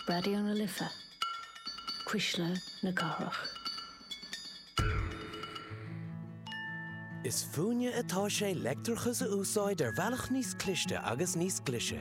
Raidió na Life, Cuisle na Cathrach. Is fúinne atá sé leictreachas a úsáid ar bhealach níos cliste agus níos glise.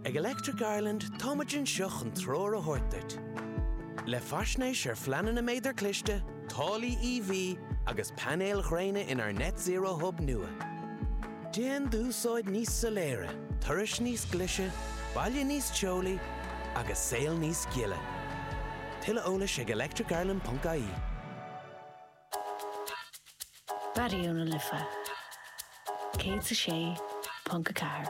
Ag Electric Ireland táimid anseo chun treoir a thabhairt duit. Le faisnéis ar phleananna méadar cliste, táillí EV agus painéil ghréine inár Net Zero Hub nua. Déan d'úsáid níos soiléire, turais níos glise, baile níos teolaí agus saol níos gile. Tuilleadh eolais ag electricireland.ie. Raidió na Life 106.4.